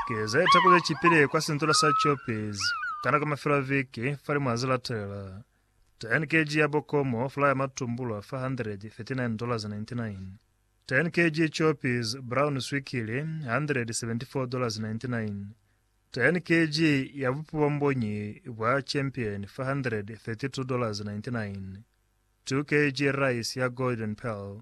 Ki ze taku ze cipile kwa sintola sa Choppies ka nako ya mafelo a viki fale mwa ze latelela. 10 kg ya bokomo, flour ya matumbulwa, $439.99. 10 kg Choppies brown swikili, $174.99. 10 kg ya bupi bwa mbonyi bwa Champion, $432.99. 2 kg rice ya Golden Pearl,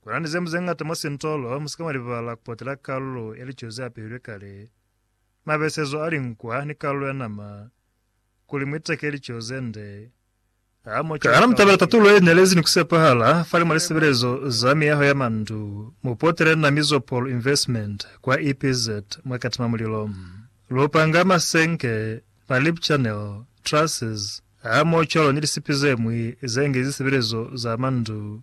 Kuna ni zemu zeñata mwa sintolo, musika mwa libala kupotela kalulo ya lico ze apehilwe kale, mabesezo a linkwa ni kalulo ya nama, kuli muiteke lico zende. Ha mo cwale mutabela tatulo ye nelezi ni kusepahala fali mwa lisebelezo za miyaho ya mandu, mupotele na Mizopol Investment kwa EPZ mwa Katima Mulilo. Lupanga, masenke, ma lip channel, trusses, ha mo cwalo ni lisipi zemwi zengi zisebelezo za mandu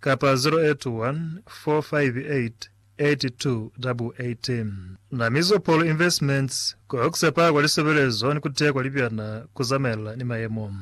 kapa 081 458 8288. Na Mizopol Investments ko ku sepa kwa lisebelezo ni ku teya kwa libyana ku zamaelana ni mayemo.